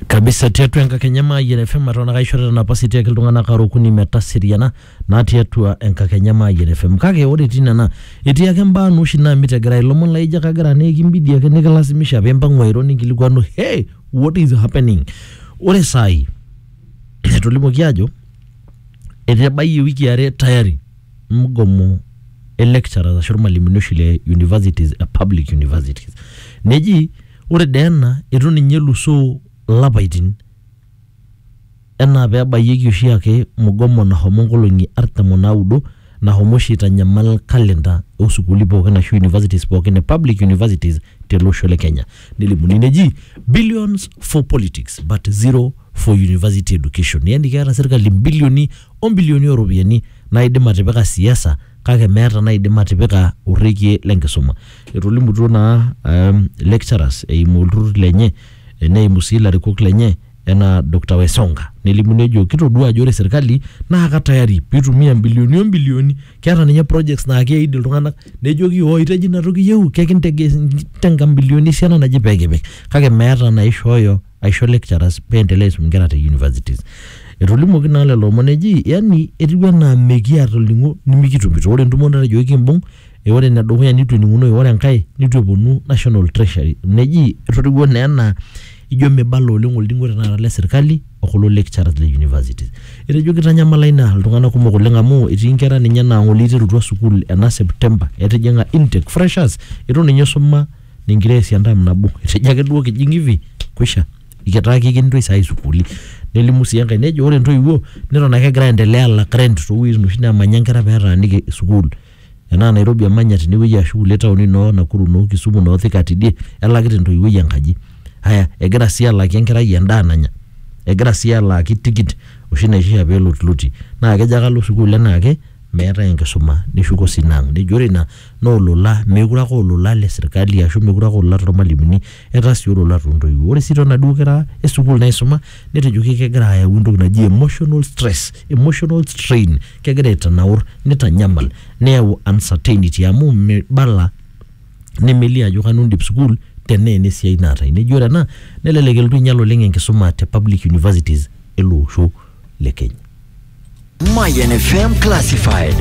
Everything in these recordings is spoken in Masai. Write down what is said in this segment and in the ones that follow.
kabisa tiatua enkakenya maayian FM eton ake aishorita napasi tiaki iltung'anak are okuni metaseriana naa tiatua enkakenya maayian FM kake ore etii nena etii ake mbaa naa oshi naamit egira ilomon laijo ake agira naa ekimbidi ake nikilasimisha piimpang'u airo ninkilikuanu hey what is happening ore saai etolimuoki aajo etebayie iwikii are tayari mgomo e lecturers ashu irmalimuni oshi le universities e public universities neji ore dee ena itu ninye elusoo ilapaitin enaa pebayieki oshiake mgomo nahomo nkolong'i artam onaudo nahomo oshi aitanyamal calendar osukuuli pookin ashu universities pookin e public universities tele osho le kenya nelimuni neji billions for politics but zero for university education yani keeta sirkali imbilioni. o mbilioni o ropiyiani naaidim atipika siasa kake meeta naaidim atipika orrekie le nkisuma. Etolimutuo naa um, lecturers eimu olturrur lenye neimu sii ilarikok lenye enaa Doctor Wesonga nelimu nejo kitodua ajo ore serkali naa ka tayari piitumia mbilioni o mbilioni keeta ninye projects naa keid iltung'anak nejoki ooi tejo ina toki iyieu kekinteng'a mbilioni esiana naje pee kipik kake meeta naishooyo aisho lecturers pee endelea aisum inkera te universities. Etolimuoki naa lelo omon eji yani etiu enaa mekiata olning'o nimikitumito. Ore entumo natejo ekimbung, ore ene dukuya nitu ening'unoyu, ore enkae nitu eponu national treasury. Neji etotiwuo naa enaa ijo mibala oleng olning'o tenakata le serikali o kulo lecturers le universities. Etejo kitanyamala ina iltung'anak kumok oleng amu etii inkera ninye naa ng'ole iterutua sukuul ena September etijing'a intake, freshers, itu ninye isuma ningira aesie entam nabo etejo ake duo kijing hivi kwisha ikitaa kikintoi saa hii sukuuli nelimu sii enkae nejo ore intoiwuo neton ake egira aendelea alak rent towueitin oshi nemanya inkera petaaniki sukuul enaa Nairobi emanya tinewueji ashu kulie taoni inoo Nakuru inoo Kisumu inoo Thika tidie elakita entoiwuoi enkaji aya egira sii alaaki enkerai endaa nanya egira sii alaaki tikit oshi naishia pelotiloti naa kejo ake alo sukuul enaake meetae enkisuma neshuko sii ina ang nejo ore ina. naa olola, meekure ake aa olola le sirkali ashu meekure ake aa olola tormalimuni etaa sii olola toontoiwuo. Ore sii too naduo kera e sukuul naaisuma netejoki kegira ayau entoki naji emotional stress, emotional strain, kegira aitanaur, nitanyamal, neyau uncertainty amu mibala nemelio ajo kanu indip sukuul tenaa ena esiai naata. Neji ore ena nelelek elotu ainyal oleng' enkisuma te public universities ele osho. le keny. Mayan FM Classified.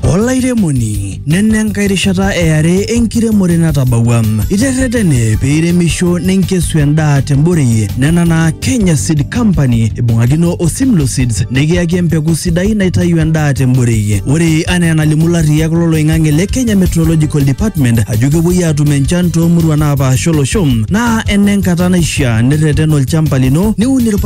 olairemoni nena enkae rishata eare enkiremore natabawua iterretene pee iremisho ninkesu endaa temborei nena naa Kenya Seed Company ibung'akino o Simlo Seeds nikiyaki empeku sidai naitayu endaa temborei ore anaa enalimu larriyak loloing'ang'e le Kenya Meteorological Department ajo kepuoi aatum enchan toomurua naapasha olosho naa enenkata naishiaa nirreten olchamba lino niun irpa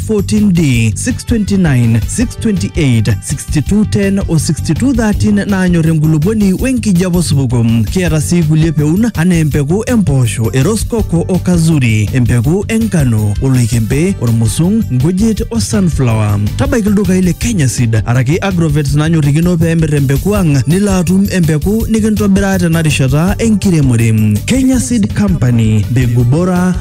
14D, 629, 628, 6210 o 6213 naanyor enkulupuoni we nkijape osupuko. Kiata sii kulie peun anaa empeku empoosho, eroskoko o kazuri, empeku enkano, oloikembe, ormusung, nkujit o sunflower. Tabaiki ildukai le Kenya Seed araki Agrovet nanyorrikino pee emir empeku ang nilo atum empeku nikintobiraa tena rishata enkiremore. Kenya Seed Company, mbegu bora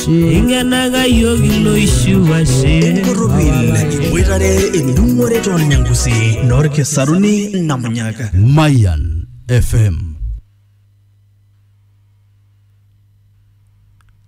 Ingenaga yiok iloishu ashe. Enkorropil iboitare endung'ore toolnyangusi noolkisaruni namunyaka. Mayan FM.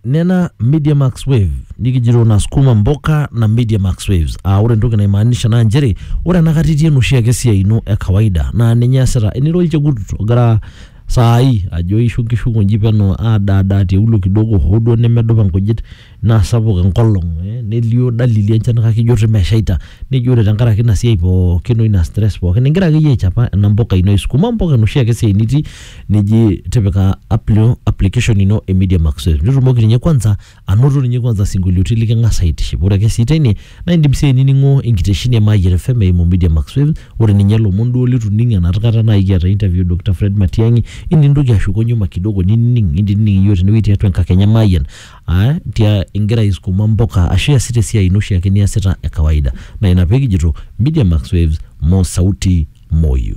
nena media max wave nikijito na sukuma mboka na media max waves aa ore entoki naimaanisha naa nchere ore enakata itii enoshiake siai ino e kawaida naa ninye easita enira olchekut ogira saa hii ajo ishu nkishu nkunji peno aadaadaa tiaulo kidogo hoo duo nemedupa nkujit naa sapuk enkolong eh, nelio dalili enchan kake ijo rrip meshaita nijo ore tenkaraki ina siai pookin oina stress pookin ingira akeyie aichapa ena mpuka ino isukuma mpuka enoshi ake siai nitii neji tipika app ino application ino e media max nitumoki ninye kwanza anoto ninye kwanza sinkolioiti liking'as aitiship ore ake sii teine naa indim sii ainining'o enkitesheni e Mayian FM eimu Media Max Waves ore ninye ilomon duo litu ining enoshi kata naaji kiata interview Dr. Fred Matiang'i inintoki ashuko nyuma kidogo ninining nintinining iyiook tenewueji tiatua enkakenya e Mayian aa tia ingira aisukuma mpuka ashu iasita esiai ino oshiake niasita e kawaida naa ina pekijito Media Max Waves mo sauti moyyu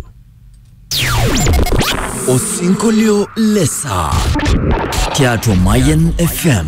Osinkolio le saa tiatua Mayian FM.